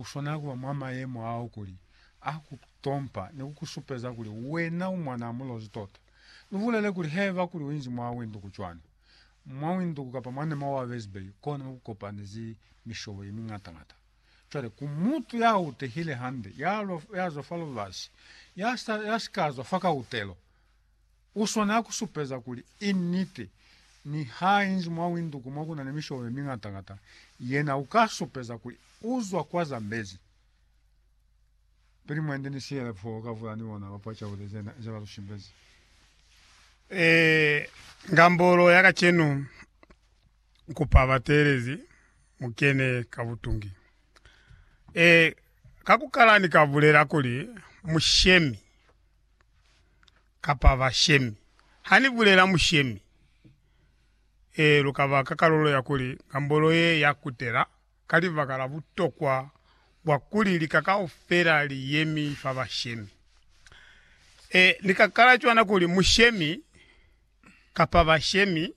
Uswanela kuba mwa mayemo ao kuli a ku tompa ni ku ku supeza kuli wena u mwanaa mulozi tota. Lu bulele kuli haiba kuli uinzi mwa winduku cwani, mwa winduku kapa mwa nema wa bezibei, kona ku kopanizi mishobo ye miñata-ñata. Cwale, ku mutu ya utehile hande, ya lwa, ya zwa fa lubasi, ya sa, ya si ka zwa fa kautelo, U swanela ku supeza kuli i niti. Niha i inzi mwa winduku mo ku na ni misholo ye miñata-ñata, yena u ka supeza kuli u zwa kwa Zambezi. Pili mwendi ni siyele foo, u ka vula ni bona bapwa caude ze ne ba lu shimbezi. Ee, ngambolo ya kacenu u kupa bateelezi mu kene ka butungi. Ee, ka ku kala ni ka bulela kuli, Mushemi, kapa bashemi. Ha ni bulela mushemi, ee, lu ka ba ka kalulo ya kuli ngambolo ye ya kutela ka libaka la butokwa bwa kuli lika kaufela li yemi fa bashemi. Ee, ni ka kala cwana kuli mushemi kapa bashemi,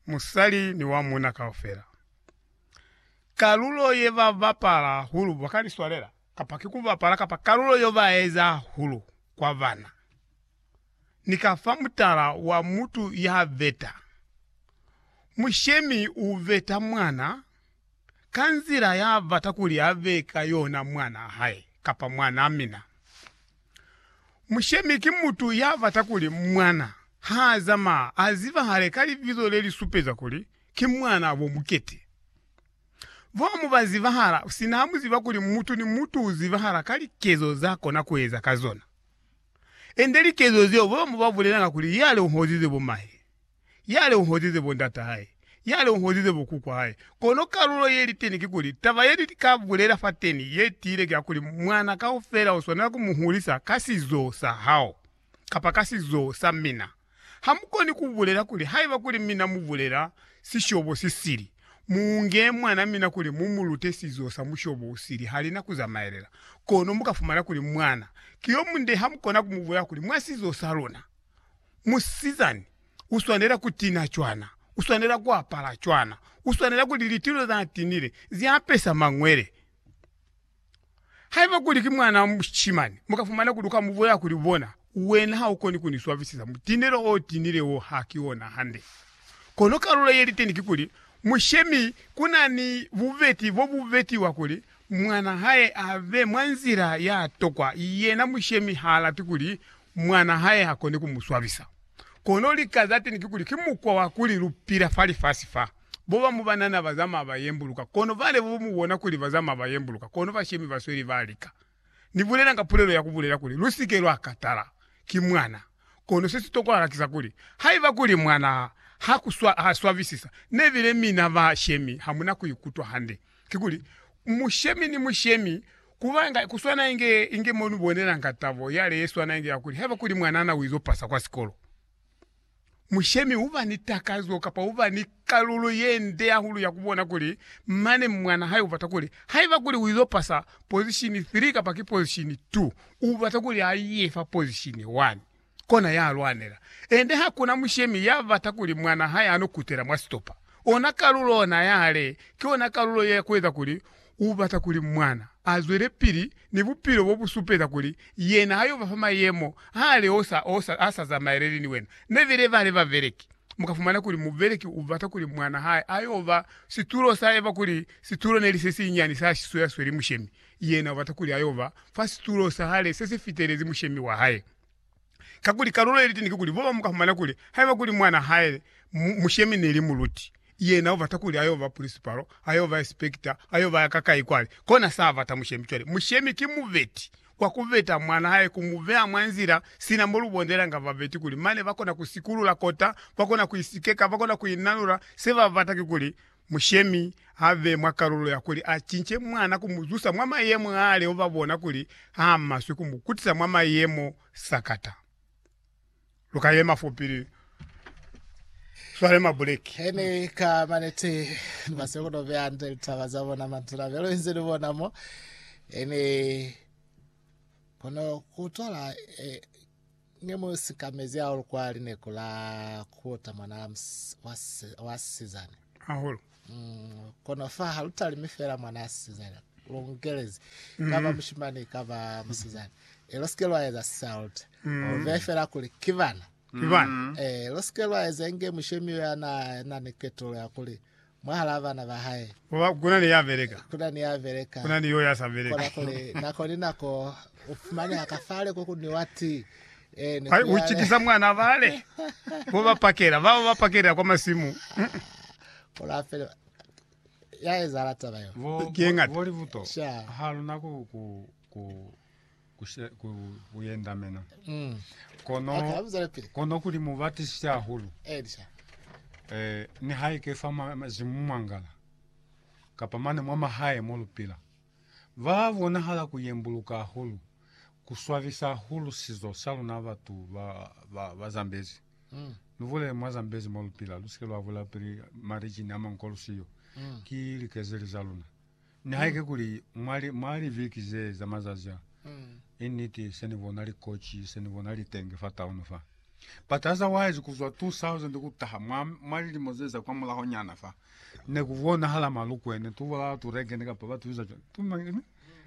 musali ni wa muuna kaufela. Kalulo ye ba bapala hahulu ba ka ni swalela. kapa ki ku bapala kapa kalulo yo ba eza hulu kwa bana, ni ka fa mutala wa mutu ya beta. Mushemi u beta mwana ka nzila ya bata kuli a be ka yona mwana hae kapa mwana mina. Mushemi ki mutu ya bata kuli mwana ha zamaya a zibahale ka libizo le li supeza kuli ki mwana bo mukete. Bo mu ba zibahala sina ha mu ziba kuli mutu ni mutu u zibahala ka likezo za kona ku eza ka zona. Ende likezo zeo bo mu ba bulelanga kuli yale u hozize bo mahe, yale u hozize bo ndata hae, yale u hozize bo kukwa hae. Kono kalulo ye li teni kikuli, taba ye ni ka bulela fateni ye tiile ki ya kuli mwana kaufela u swanela ku mu hulisa ka sizo sa hao kapa ka sizo sa mina. Hamukoni kubulela kuli, Haiba kuli mina mubulela sishobo sisili, muunge mwana mina kuli mumulute sizo sa mushobo usili, halina kuzamaelela. Kono mukafumana kuli mwana ki yomunde, hamukona kumubulela kuli, Mwa sizo saluna, musizani uswanela kutina cwana, uswanela kuapala cwana, uswanela kuli litilo zanatinile ziapesa mangwele. Haiba kuli ki mwanaa mushimani, mu ka fumana kuli u ka mu bulela kuli, Bona, wena ha u koni ku ni swabisisa, mutinelo o tinile wo ha ki ona hande. Kono kalulo ye liteni kikuli, Mushemi ku na ni bubeti bo bu betiwa kuli mwanaa hae a be mwa nzila ya tokwa, yena mushemi ha lati kuli mwanaa hae ha koni ku mu swabisa. Kono lika za teni kikuli, ki mukwa wa kuli lu pila fa lifasi fa. Bo bamu ba nana ba zamaya ba yembuluka, kono bale bo mu bona kuli ba zamaya ba yembuluka, kono bashemi ba sweli ba lika. Ni bulelanga pulelo ya ku bulela kuli, Lu si ke lwa katala. Ki mwana. Kono se si tokwahala ki sa kuli, haiba kuli mwana ha ku swa, ha swabisisa, ne bile mina ba shemi ha mu na ku ikutwa hande. Kikuli, mushemi ni mushemi, ku ba inga, ku swana inge, inge mo lu bonelanga tabo yale ye swana inge ya kuli, haiba kuli mwana na u izo pasa kwa sikolo. Mushemi uba ni takazo kapa uba ni kalulo ye nde hahulu ya kubona kuli mane mwana hae ubata kuli, haiba kuli uizo pasa pozishini 3 kapa ki pozishini 2, ubata kuli a ye fa pozishini 1. Kona ya lwanela. Ende hakuna mushemi ya bata kuli mwana hae ano kutela mwa sitopa. Ona kalulo ona ya le, ki ona kalulo ya kueza kuli U bata kuli Mwana a zwelepili ni bupilo bo bu supeza kuli yena ha yo ba fa mayemo a a leosa o sa, a sa zamaeleli ni wena. Ne be lebale babeleki. Mu ka fumana kuli mubeleki u bata kuli mwana hae a yo ba situlo sa eba kuli situlo ne li se sinyani sa shiso ya sweli mushemi. Yena u bata kuli a yo ba fa situlo sa hale se si fitelezi mushemi wa hae. Kakuli kalulo ye liteni kikuli, Bulowa muka fumana kuli, haiba kuli mwana hae mu, mushemi neli muluti, yena ubata kuli ayo ba pulisipalo, ayo ba espekita, ayo ba ka kai kwale, kona sa bata mushemi. Cwale, mushemi ki mubeti kwa kubeta mwana hae, ku mu beha mwa nzila, sina mo lu bondelanga babeti kuli mane ba kona ku sikulula kota, ba kona ku isikeka, ba kona ku inanula, se ba bata kikuli Mushemi a be mwa kalulo ya kuli a cince mwana ku mu zusa mwa mayemo a leo ba bona kuli a maswe ku mu kutisa mwa mayemo sakata. Lu ka yema fo pili lu swale mabuleki. He ni ka maneti, ni ba siyo ku to beya hande litaba za bona matuna be lu inzi ni bona mo. He ni kono ku tola eh, Ne mu sikamezi hahulu kwa lineko la kuota mwana wa sisizane. Hahulu. Mm, kono fa ha lu talimi fela mwana sisizane. Lu ngelezi. Mm. Kaba mushimani, kaba musizane. E lo sike lwa eza sisalote. Mm. Ove fela kuli kivana. Kivana. Mm. E lo sike lwa eza inge mushemi ya na, na ni ketolo ya kuli. Mwahalaa bana ba hae. Koba kuna ni ya beleka. Kuna ni ya beleka. Kuna ni yo ya sa beleka. Kona kuli, nako ni nako, u fumaneha ka fale ko ku nwiwa tii. Ee, ni ku yale. U cikisa mwana bale bo ba pakela, bao ba pakelela kwa masimu. Kola fela, ya ezahala taba yo. Ki ye ngata. Bo libuto. Sha. Ha luna ku, ku, ku. ku yendamena kono kono kuli mu batisise hahulu eh ni haike fa mazimu mwangala kapa mane mwa mahae mo lupila ba bonahala ku yembuluka hahulu ku swabisa hahulu sizo sa luna batu ba ba, ba zambezi mm. ni bulele mwa zambezi mo lupila lu sike lwa bula pili marijini a mankolusiyo mm. ki likezeli za luna Nihaike kuli mwa li, mwa liviki ze, za mazazi a, i niti, se ni bona likoci, se ni bona litenge fa taunu fa. But otherwise, ku zwa 2000 ku taha, mwa, mwa lilimo ze za kwa mulaho nyana fa, ne ku bonahala malukwene, tu bola turegene, kapa ba tubiza cwani, tu mangene,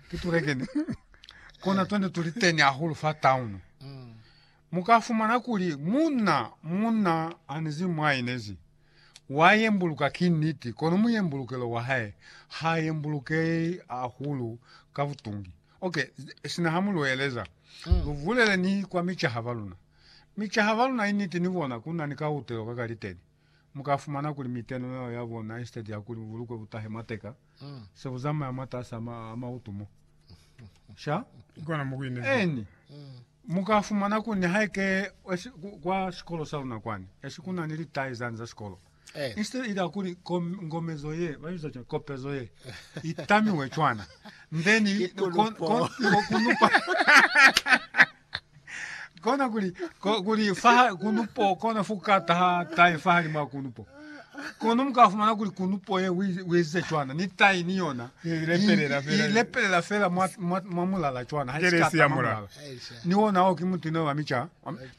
ki turegene. Kona twene tuli teni hahulu fa taunu. Mukafumana kuli, muna, muna, anizi mwa inezi. Wa yembuluka, ki niti, kono muyembulukelo wa hae ha yembulukehi hahulu ka butungi. Ok, sina ha mu lu eleza, lu vulele ni kwa micaha ba luna. Micaha ba luna, i niti, ni bona ku na ni kahutelo ka kaliteni. Mu ka fumana kuli miteno yeo ya bona, instead ya kuli bubulukwe bu tahe mwateka, se bu zamaya mwatas'a mautu mo. Sha? Eeni. Mukafumana ku ni haike kwa sikolo sa luna kwani esi kuna ni litai zani za sikolo eh. instead ila kuli kom, ngomezo ye babiza cwana kopezo ye itamiwe cwana then kunupa kona kuli kuli fa kunupo kona fukata ha tai fa halima kunupo Kono mu ka fumana kuli kunupo ye u ezize cwana, ni tai ni yona i lepelela fela mwa mulala cwana, ha i si ka tama mulala. Ni ona ao ki mutuna wa mica.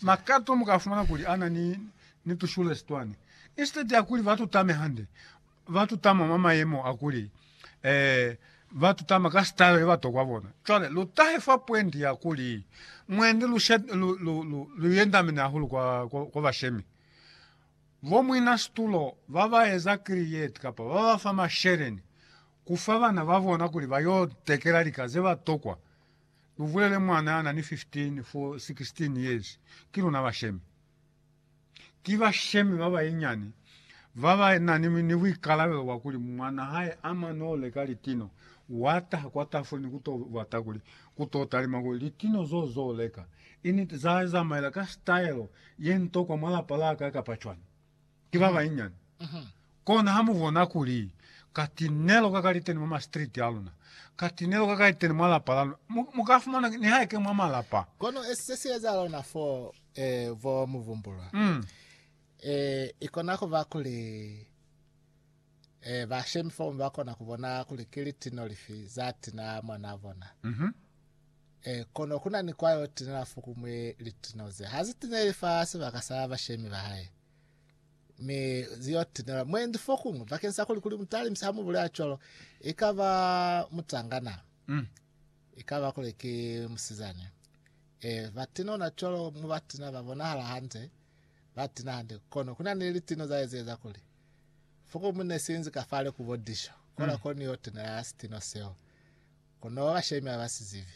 Makato mu ka fumana kuli a na ni tushulesi twani. Instead ya kuli ba tutame hande, ba tutama mwa mayemo a kuli ba tutama ka style ye ba tokwa bona. Cwale lu tahe fa pwendi ya kuli, mwendi lu yendamene hahulu kwa bashemi. Bo mwina situlo ba ba eza kriyeti kapa ba ba fa masheleni ku fa bana ba bona kuli ba y'o tekela lika ze ba tokwa, lu bulele mwana ya na ni 15 fo 16 years, ki luna bashemi. Ki bashemi ba banyinyani ba ba na ni buikalabelo bwa kuli mwana hae a mane o leka litino, wa taha kwa tafule ni ku t'o bata kuli ku t'o talima kuli litino z'o z'o leka Initi za hae za maela ka sitaelo ye nto kwa mwa lapa la ka kapa cwani ki ba banyinyani. Kona ha mu bona kuli ka tinelo ka ka liteni mwa masitiriti a luna, ka tinelo ka ka liteni mwa lapa la luna, mu, mu ka fumana nihaike mwa malapa. Kono se si ezahala ona fo, eh, vo mu vumbulwa, Mm. eh, i kona ku ba kuli. Ee, bashemi fomu ba kona ku bona kuli ki litino lifi za tinela mwanaa bona. Ee, kono ku na ni kwa yo tinela fokumwi litino ze ha zi tineli fa sibaka sa bashemi ba hae, mi zi yo tinelwa mwendi fokuñwi. Bakeni sa kuli kuli mutalimisi ha mu bulela cwalo, i ka ba mutangana, i ka ba kuli ki musizani. Ee, ba tinona cwalo, mu ba tina ba bonahala hande, ba tina hande, kono ku na ni litino za ezieza kuli Fokumu ne si inzi ka fale ku bo disho, kola ko ni yo tenela sitino seo. Kono ba bashemi ha ba si zibi.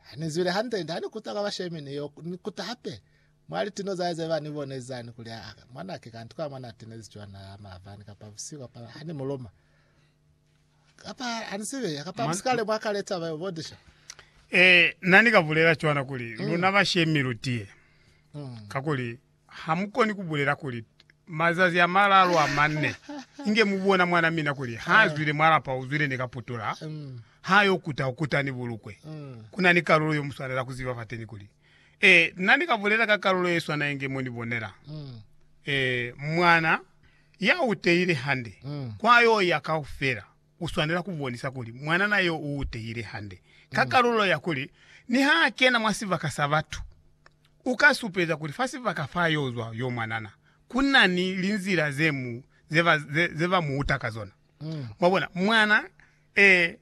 Ha ni zwile hande, ha ni kuta kwa bashemi ni yo ni kuta hape mwa litino za hae ze ba ni bone za ni kuli, Aa, mwanake, kanti kwa mwa na tenezi cwana ha maavani, kapa busihu, kapa ha ni mu loma. Kapa ha ni zibi, kapa mu si kale mwa ka leta ba bo disho. Eh, na ni ka bulela cwana kuli, luna bashemi lu tiye. Mm. Kakuli Hamukoni kubulela kuli, Mazazi a malalu a manne, inge mubona mwana mina kuli haazwile mwa lapa uzwile ni kaputula, hayo kuta ukuta ni bulukwe. Kuna ni kalulo yo muswanela kuziba fateni kuli, Ee, na ni ka bulela ka kalulo yeswana inge mo ni bonela. Ee, mwana ya utehile hande, kwa yo ya kaufela. u swanela ku bonisa kuli mwanana yo u tehile hande ka kalulo ya kuli ni ha a kena mwa sibaka sa batu, u ka supeza kuli fa sibaka fa yo zwa yo mwanana ku na ni linzila ze mu, ze ba, ze, ze ba mu uta ka zona. Mwabona? Mwana, ee.